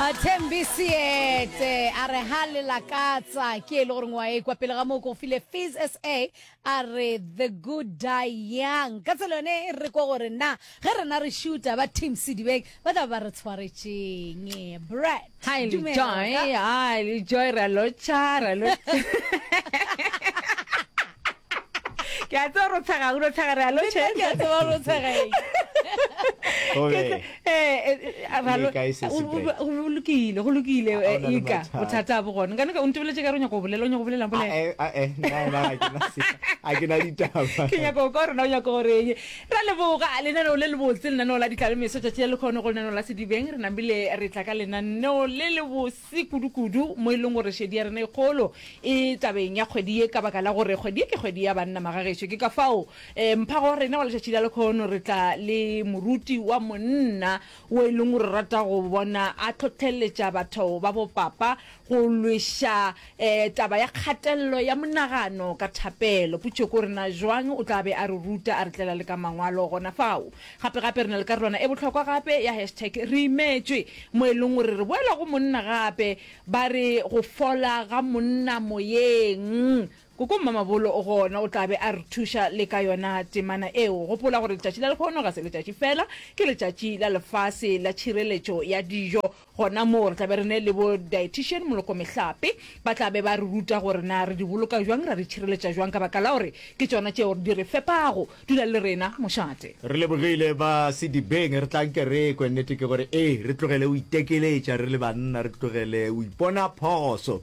A Thembi Seete a re ha le lakatsa ke e le gore ngwa e kwa pele ga moo ko go file Fizz SA a re the good die young. Ka tsela yone e re kwa gore na ge rena re shuta ba Team Sedibeng ba tla ba re tshwaretšeng. Brett, Hi le dumela joy, ka- hi le joy, ra lotšha, ra lotšha. ke a tseba ro tshega o tshega re alo che ke a tseba ro tshega e obe eh ra lo go lokile go lokile ika bothata bo gone kana ka o ntebeletse ka ronya go bolela o nya go bolela bolela eh eh na na ke na se a ke na ditaba ke nya go ka rona o nya go re ye ra le boga le na le le botse le na no la ditlale meso tša tšela le khone go le na no la sedibeng re nambile re tla ka le na no le le se kudukudu mo e leng gore šedi ya rena e kgolo e tabeng ya kgwedi ye ka baka la gore kgwedi ye ke kgwedi ya banna magagešo ke ka fao um mphago wa rena wa letšatši la lekgono re tla le moruti wa monna wo e leng gore rata go bona a tlhohleletša batho ba bopapa go lweša um taba ya kgatelelo ya monagano ka thapelo potšo ke gore na jwang o tla be a re ruta a re tlela le ka mangwalo gona fao Gape-gape re na le karolwana e bohlokwa gape ya hashtag Re Imetšwe, mo e leng gore re boela go monna gape. Ba re go fola ga monna moyeng. Koko Mmamabolo o gona, o tla be a re thuša le ka yona temana eo. Gopola gore Letšatši la Lekhono ga se letšatši fela, ke letšatši la lefase la tšhireletšo ya dijo. Gona moo, re tla be re ne le bo dietician, molokomehlape, ba tla be ba re ruta gore na re di boloka jwang, ra di tšhireletša jwang ka baka la gore ke tšona tšeo di re fepago. Dula le rena, mošate. Re lebogile ba Sedibeng. Re tla nke re ekwe. Nnete ke gore ee, re tlogele go itekeletša re le banna, re tlogele go ipona phoso.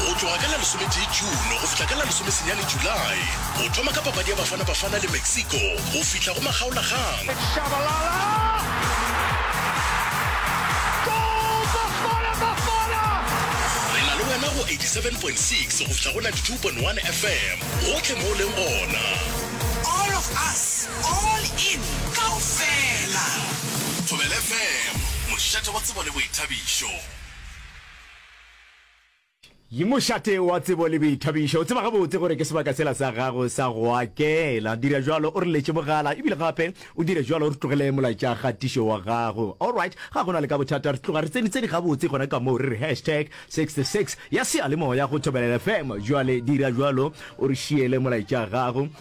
Go tloga ka la lesometee June go fihla ka la lesomesenyane July, go thoma ka papadi ya Bafana Bafana le Mexico go fihla go makgaolagang. It's wena go 87.6 go fihla go 92.1 FM gotlhe mo o leng gona. All of us, all in, kaofela. Thobela FM, mošate wa tsebo le boithabišo. Yi mošate wa tsebo le boithabišo. O tseba gabotse gore ke sebaka sela sa gago sa go akela. Dira jalo o re letše mogala ebile gape o dire jalo o re tlogele molaetša kgatišo wa gago. Alright, ga go na le ka bothata re tloga re tsenitseni gabotse gona ka moo re re hashtag 66 ya seyalemoya go Thobela FM. Bjale dira jalo o re šiele molaetša gago.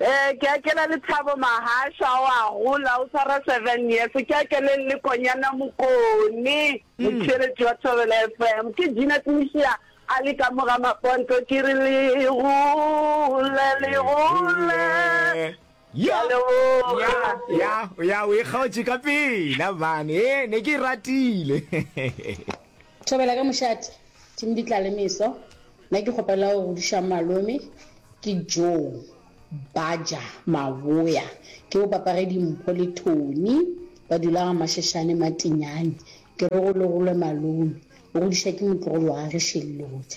Ee, ke akela Lethabo Mahasha, o a gola, o tshwara seven years. Ke akeleng le Konyana Mokone, motheeletši wa Thobela FM. Ke Gina Tmisia a le ka mo ga maponto, ke re le gole, le gole. Ke a leboga. ya ya o e kgaotše ka pela mane e ne ke e ratile Thobela ka mošate team di tla le meso nna ke kgopela go godišang malome ke Joe Baja Maboya ke bo papage dimpho le Tony ba dula ga Mashashane Matinyane ke re go logolwe malome o godiša ke motlogolo wa gage Shellodi.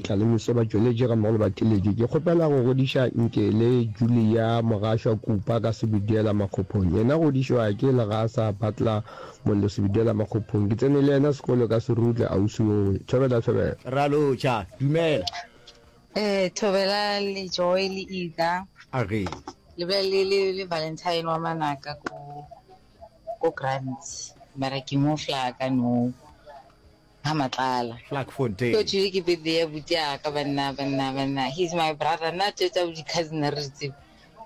Tlalemise ba tšweletše gammogo le batheletše. Ke kgopela go godiša Nkele Julia Mogašwa Kupa ka Sebidela Makgophong. Yena godišwa ke Legasa Butler Mollo Sebidela Makgophong. Ke tsene le yena sekolo ka Serutle, ausi wowe. Thobela, Thobela. Raloja, Dumela. Ee, Thobela le Joy le Ida. A re. Le be le le le Valentine wa manaka ko ko Grants. Mara ke mo fla ka nou. ga matlala. Vlakfontein. Go thwile ke birthday ya buti ya ka banna banna banna he's my brother nna tše tsa bo di cousin a re di tsebe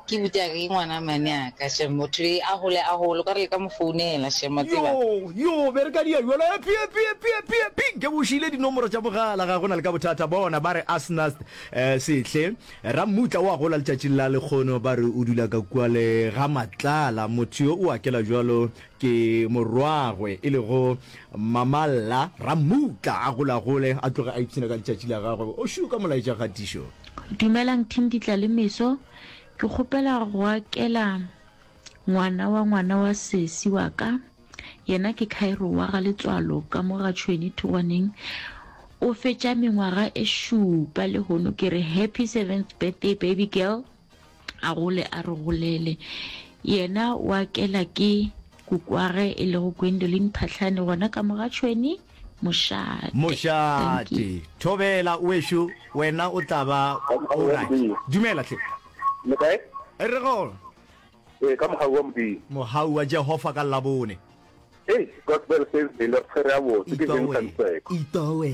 ke buti ya ka ke ngwana mane ya ka shem motho le a hole a hole kware le ka mo founela shem wa tseba Yoo, yoo, be re ka dia bjalo. Epi, epi, epi, epi, epi, nke bo šiile dinomoro tša mogala, ga go na le ka bothata. Bona, ba re Asnath eh, Sehle, Rammutla o a gola letšatšing la lekgono, ba re o dula ka kua le ga Matlala, motho yo o akela bjalo Ke morwagwe e lego Mamalla Rammutla a golagole a tloge a ipshina ka letšatši la gagwe. O šu ka molaetša kgatišo. Dumelang Thinditla le Meso, ke kgopela go akela ngwana wa ngwana wa sesi wa ka, yena ke Khairo wa ga Letswalo ka mo ga Tšhweni Thugwaneng. O fetša mengwaga e šupa lehono ke re happy seventh birthday baby girl. A gole a re golele. Yena o akela ke kukwage e lego Gwendoline Phahlane gona ka mo ga tšhweni Mošate. Mošate, Thobela wešo wena o tla ba o right. Dumela hle. Le kae? Re gona. Ee, ka Mohau wa Modimo. Mohau wa Jehova ka Labone. Hei, Gospel Thursday le re tshwere gabotse, ke Vincent Seko. Itowe,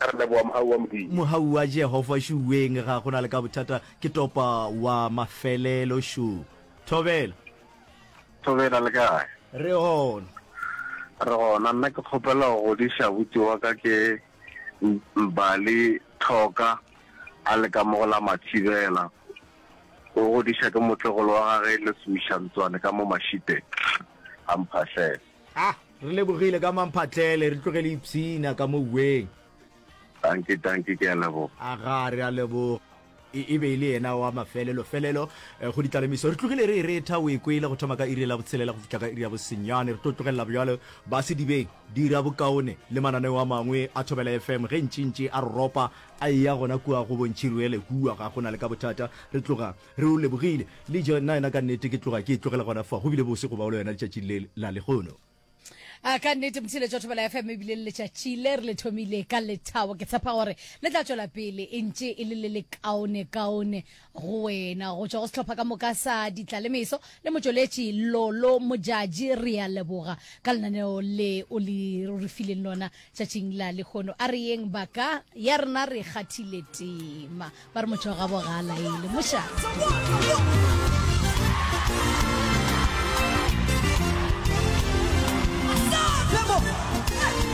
Re leboga Mohau wa Modimo. Mohau wa Jehova šuweng ga go na le ka bothata ke topa wa mafelelo šu. Thobela. Thobela le kae? Re gona. Re gona nna ke kgopela go godiša abuti wa ka ke Mbali Thoka a le ka mo go la Mathibela. O godiša ke motlegolo wa gage Leswisha Ntswane ka mo Mashiteng. A mphahlele. A re lebogile ka mamphatlele, re tlogele ipshina ka mo uweng. Dankie, dankie, ke a leboga. A ga re a leboga. E, e be e le yena wa mafelelo felelo eh, go ditlalemiso. Re tlogile re e retha, o e kwele, go thoma ka iri la botshelela go fihla ka iri ya bosenyane. Re tlo tlogelela bjalo ba sedibeng dira bokaone le mananeo a mangwe a Thobela FM ge ntšintši a roropa a eya gona kua go bontšhi ruele kua ga go na le ka bothata. Re tloga Re o lebogile. Le jo, nnaena ka nnete ke tloga ke e tlogela gona fa. Go bile bose go ba o le wena letšatšing le la lehono. A ka nnete, Motšheletši wa Thobela FM, e bile le letšatši le re le thomile ka lethabo. Ke tshepa gore le tla tšwela pele e ntše e le le le kaone kaone go wena. Go tšwa go sehlopha ka moka sa Ditlalemeso le motšweletši Lolo Modjadji, re a leboga ka lenaneo le o le re fileng lona. Tšatšing la lehono a re yeng ba ka, ya rena re kgathile tema. Ba re motho wa gabo ga a laele, mošate.